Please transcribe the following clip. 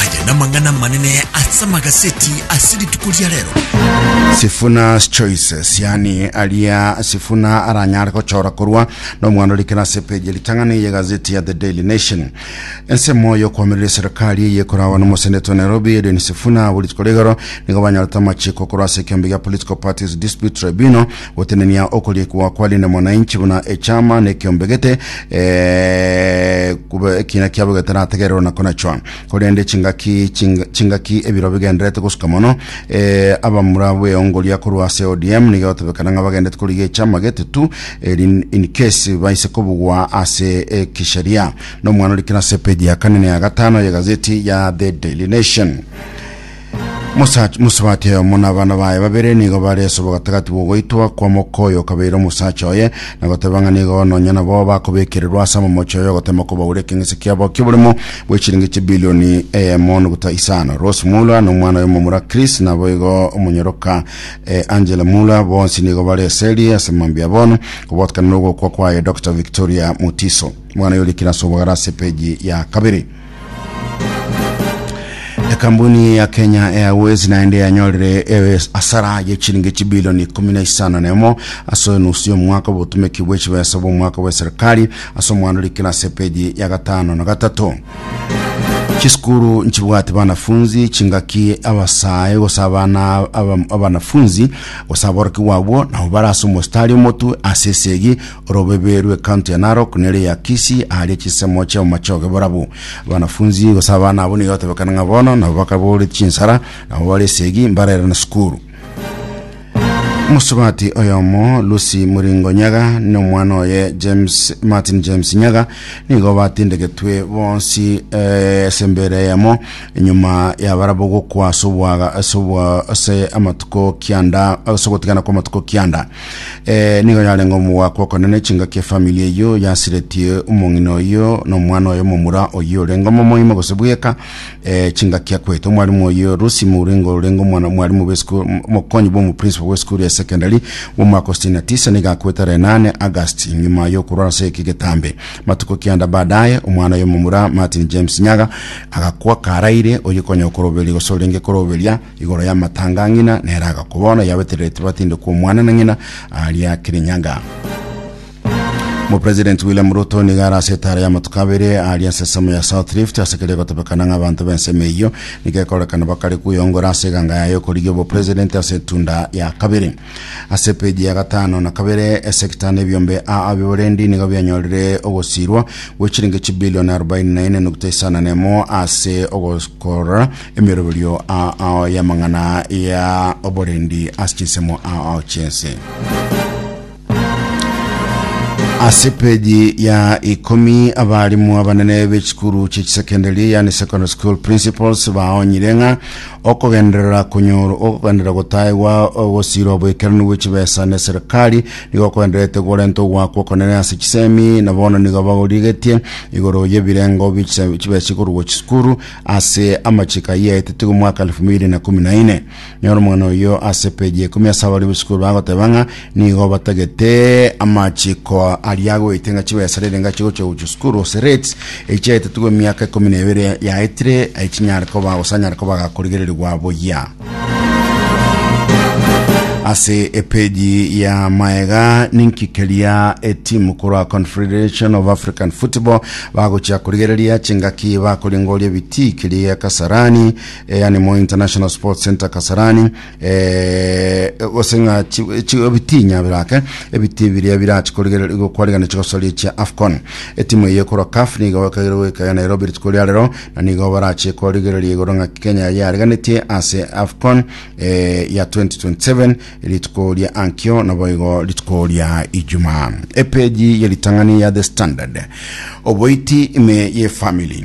Aya namang'ana amanene ase amagaseti ase rituko ria rero. Sifuna's Choices, yani aria Sifuna aranyare gochora korwa nomwana orikera ase peji ritang'ani eye gazeti ya The Daily Nation. Ensemo y'okwamerera eserikali eye ekorawa nomoseneta o Nairobi Edwin Sifuna abo rituko rigoro nigo banyorete amachiko korwa ase ekeombe gia Political Parties Dispute Tribunal Gotenenia okoriekwa kwa rinde mwananchi buna echama nekiombegete eh, kube ekina kiabo getarategererwa na konachwa korende chingaki ching- chingaki ebiro bigenderete gosuka mono eh, abamura bweongoria korwa ase ODM nigo gotebekana ng'a bagenderete korigia echama gete tu eri in case baise kobugwa ase eh, kisheria nomwana orikire ase page ya kane na ya gatano ya gazeti ya The Daily Nation Mosacha- Mosubati oyomo na abana baye babere nigo bare ase obogatagati bw'ogoitwa kwa moka oyo okabeire omosacha oye, na goteba ng'a nigo nonya nabo bakobekererwa ase amamocho oyo ogotema kobaura ekeng'ese kiabo ki'oborimo bwe chiringi chibilioni eyemo nuguta isano. Rose Muller na omwana oye omomura Chris naboigo omonyoroka eh, Angela Muller bonsi nigo bare eseri ase mambia bono, kobwatanekana nogokwa kwaye Doctor Victoria Mutiso. Mwana oyo orikire ase obogare ase epeji ya kabere. Ekampuni ya Kenya Airways naende yanyorire ewes- asara ye chiringi chibilioni ikumi na isano na emo ase enusu y'omwaka obotumeki bwe chibesa bw'omwaka bwa serikali ase omwando rikira ase epeji ya gatano na gatato chisukuru nchibwate banafunzi chingaki abasae gose abana aba- abanafunzi gose aboroki gwabwo nabo bare ase omositari omotu ase esegi Orobebe rw'ecounty ya Narok nere ya Kisii aharia chisemo chi'amamache ogeborabo. Abanafunzi gose abana abwo nigo batebekana ng'a bono nabo bakabore chinsara, nabo bare esegi mbarere na sukuru. Omosobati oyomo Lucy Muringo Nyaga n'omwana oye James Martin James Nyaga nigo batindegetwe bonsi eh, ase embera eyemo enyuma yabarabo gokwa ase obwaga ase obwa ase amatuko kianda ase ogotigana kw'amatuko kianda Eh, nigo yarenge omogwako okonene chingaki efamili eyio yasiretie omong'ina oyio na omwana oyo momura oyio orenge omomoimo gose bweka eh, chingaki akwete omwarimu oyio Rusi Mouringo orenge omwana omwarimu bw'esukuru omokonyi bw'omoprincipo bw'esukuru ya secondary bw'omwaka o sitini na tisa nigo akwete renane August nyuma yokorwa ase eki getambe matuko kianda baadaye omwana oyo momura Martin James Nyaga agakwa karaire oyio konya okoroberia gose orenge koroberia Igoro y'amatanga a ng'ina nere agakwa bono, yabeterereti batinde kw'omwana na ng'ina aaria Kirinyaga. Omopresidenti William Ruto nigo are ase etaara y'amatuko abere aaria ensesemo ya South Rift ase keria egotebekana ng'a abanto b'ensemo eyio nigo ekorekana bakare kweyongora ase eganga yaye y'okorigia obopresidenti ase etunda ya kabere. Ase peji ya gatano na kabere, esekita na ebiombe a abiborendi nigo bianyorire ogosiirwa gwe chiringi chibilioni arobaini na ine nukta isano na emo ase ogokorora emeroberio a ao y'amang'ana ya oborendi ase chinsemo a ao chiense. ase peji ya ikomi abarimu abanene b'echikuru chi'echisekendari yani secondary school principals baonyire ng'a Okogenderera konyorwa ogogenderera gotaegwa ogosirwa bw'ekeranu bwe chibesa ne serikali nigo okogendererete gorente ogoakwa okonene ase chisemi, na bono nigo bagorigetie igoro y'ebirengo bi chise- chibesa ikorwa chisukuru ase amachiko ayio yaetetwe omwaka 2014. Nyora omong'ina oyio ase page ya ikomi ase abaria b'esukuru bagoteba ng'a Nigo batagete amachiko aria agoite ng'a chibesa rere ng'a chigochia gochia sukuru ase rates echi chiaetetwe emiaka ikomi na ebere yaetire ai chinyare koba gose anyare koba gakorigererigwa boyia ase epeji ya maega ninki keria etimu korwa confederation of african football bagochia korigereria chingaki bakoringoria biti keria kasarani eh, yani mo international sports center kasarani eh, gose ng'a chi- chi- ebitinya birake ebiti biria birachi kwarigana chigosori chia afcon etimu eye ekorwa caf nigo ekagere goikayo nairobi rituko ria rero na nigo barachie korigereria igoro ng'a kenya yariganetie ase afcon eh, ya 2027 rituko ria ankio naboigo rituko ria ijumaa epeji yeritang'ani ya the standard oboiti ime ye family